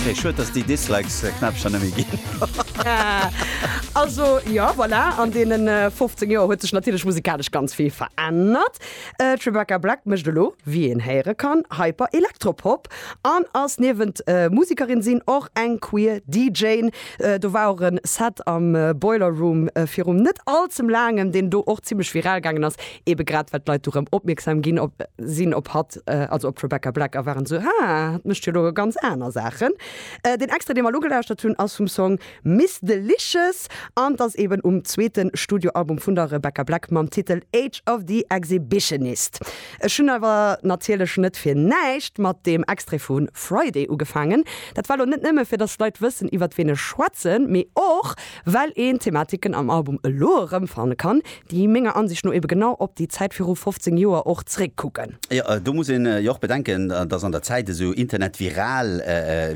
Okay, schued dass déi Dislikes Knäppcher net méi ginn. Also jo, voilà, an deenen 15 Joer huet sech natierlech musikalesch ganz vill verännert. D'Rebecca Black mécht elo, wéi een héiere kann, Hyper-Elektropop an ass niewent Musikerin sinn och eng queer DJ. Do war och e Set am Boiler Room virum net allzem laangem, deen do och zimmlech viral gaangen ass, ebe grad well d'Leit do rëm opmierksam ginn sinn op hatt. also op Rebecca Black a waren esou, ha, dat mécht jo elo ganz aner Saachen. Deen Extrait, dee mer elo gelauschtert hunn, ass vum Song Miss Delicious an et ass eeben um zweete Studioalbum vun der Rebecca Black mam Titel Age of the Exhibitionist. Ech hunn awer natierlech net fir näischt mat deem Extrait vu Friday ugefaangen. Dat war elo net nëmme fir, datt d'Leit wëssen, iwwert ween ech schwätzen, mee och, well een Thematiken am Album elo erëmfanne kann, déi menger Ansicht no ebe genau op déi Zäit viru 15 Joer och zeréckkucken. Jo, do muss een jo och bedenken, dass an der Zäit esou Internet-viral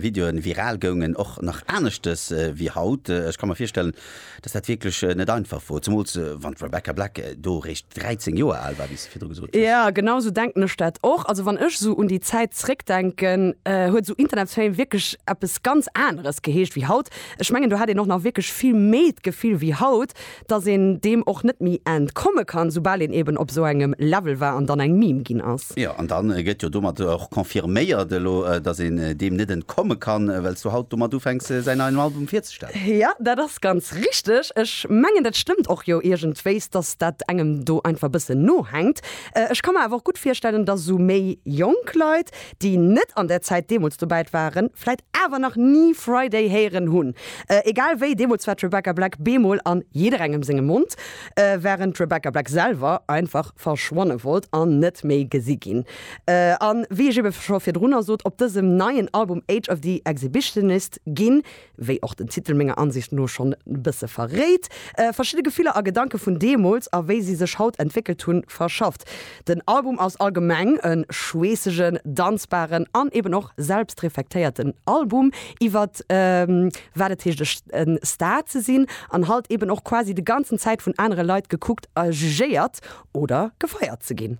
Videoen viral goungen, och nach aneschtes wéi haut. Ech ka mer virstellen, dass dat wierklech net einfach wor, zemools wann d'Rebecca Black do eréischt 13 Joer al war, wéi s de virdru gesot hues. Jo, genau esou denken ech dat och. Also wann ech esou un déi Zäit zeréckdenken, huet esou Internet-Fame wierklech eppes ganz aneres geheescht wéi haut. Ech mengen, do hat een och nach wierklech vill méi d'Gefill wéi haut, dass een deem och net méi entkomme kann, soubal een eben op esou engem Level war an dann eng Meme ginn ass. Jo, an da gëtt jo domat och confirméiert elo, dass een deem net entkomme kann, well s du haut domat ufänks, säin neien Album virzestellen. Jo, dat ass ganz richteg. Ech mengen, dat stëmmt och jo iergendwéis, dass dat engem do einfach e bëssen nohänkt. Ech ka mer awer och gutt virstellen, dass esou méi jonk Leit, déi net an där Zäit deemools dobäit waren, vläit awer nach ni Friday héieren hunn. Egal wéi, deemools war d'Rebecca Black bemol an jidderengem sengem Mond, wärend d'Rebecca Black selwer einfach verschwanne wollt an net méi gesi ginn. A wéi ech ebe scho virdrunner sot, op dësem neien Album Age of the Exhibitionist ginn wéi och den Titel menger Ansicht no schonn e bësse verréit, verschidde Gefiller a Gedanke vun deemools a wéi si sech haut entwéckelt hunn, verschafft. Den Album ass allgemeng e schweessegen, danzbaren an eben och selbstreflektéierten Album iwwer wat et heescht e Star ze sinn an halt eben och quasi de ganzen Zäit vun anere Leit gekuckt a jugéiert oder gefeiert ze ginn.